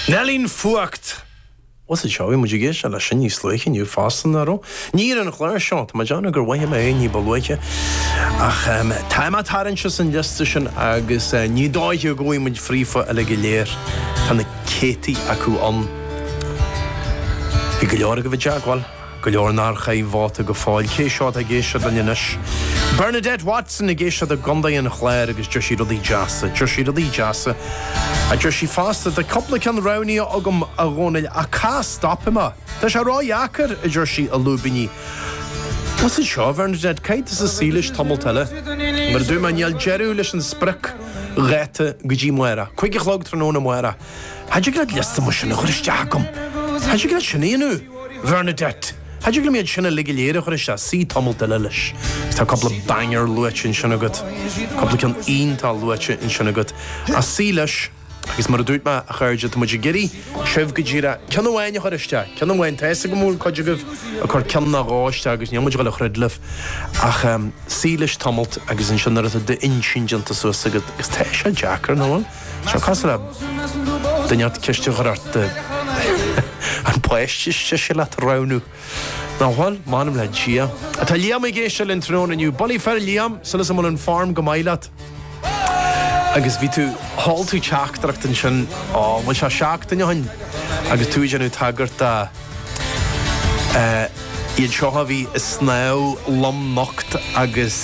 Nealaín fuacht! What's it Seoigh muid ag éisteacht leis sin níos luaithe inniu fosta nach raibh. Ní ar an chlár seo, tá mé ag déanamh gur luaigh mé é ní ba luaithe, ach tá mé ag tarraingt as an liosta sin agus ní dóiche go bhfaighidh muid fríofa uilig go léir. Tá na céadtaí acu ann. Bhí go leor agaibh i dteagmháil. Go leor nár chaith vóta go fóill. Cé seo atá ag éisteacht linn anois? Bernadette Watson ag éisteacht i gContae an Chláir agus deir sí rudaí deasa. Deir sí rudaí deasa. A deir sí fosta, Tá cúpla ceann roghnaithe agam, a Dhónaill, ach cá stopfaidh mé? Tá sé ró-dheacair, a deir sí, i lúibíní. Maise seo, Bernadette, caithfidh tú suí leis tamalt eile? Mar a dúirt mé, níl deireadh leis an spriocdháta go dtí amárach. Cúig a chlog tráthnóna amárach. Cha dtig an liosta mar sin a chur isteach chugam. Cha dtig leat sin a dhéanamh. Bhernadette. Cha dtig an méid sin uilig go léir a chur isteach, suigh tamalt eile leis. Agus tá cupla banger luaite ansin agat. Cupla ceann iontach luaite ansin agat. Ach suigh leis agus mar a dúirt mé, a chairde, tá muid ag iarraidh sibh go díreach ceann amháin a chur isteach. Ceann amháin. Tá 'fhios agam go bhfuil cuid agaibh ag cur ceann ná dhó isteach agus níl muid ag dul a throid libh. Ach suigh leis tamalt agus ansin nuair atá d'inchinn déanta suas agat, agus tá sé deacair, nach bhfuil? Seo cosúil le duine inteacht ceist a chur ort. An páiste is deise leat a roghnú? Nach bhfuil, m'anam le Dia. Tá Liam ag éisteacht linn tráthnóna inniu. Bulaí fir Liam, súil as go bhfuil an fhoirm go maith leat? Agus bhí tú, sheol tú teachtaireacht ansin, ó, bhuel seo seachtain ó shin, agus tú ag déanamh tagairt dá iad seo a bhí ag snámh lomnocht agus.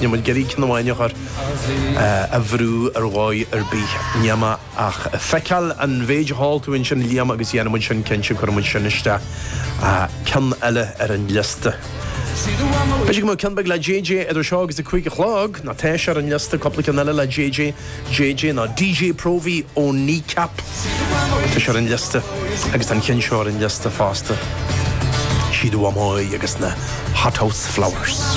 Níl muid ag iarraidh ceann amháin a chur a bhrú ar dhóigh ar bith m'anam ach feiceáil an mhéid a sheol tú ansin Liam agus dhéanfaidh muid sin cinnte cuirfidh muid sin isteach ceann eile ar an liosta. B'fhéidir go mbeadh ceann beag le JJ idir seo agus a cúig a chlog, nó tá sé ar an liosta cúpla ceann eile le JJ. JJ nó DJ Próvaí ó Kneecap. Tá sé ar an liosta agus tá an ceann seo ar an liosta fosta. Sí do Mhamó Í agus na Hothouse Flowers.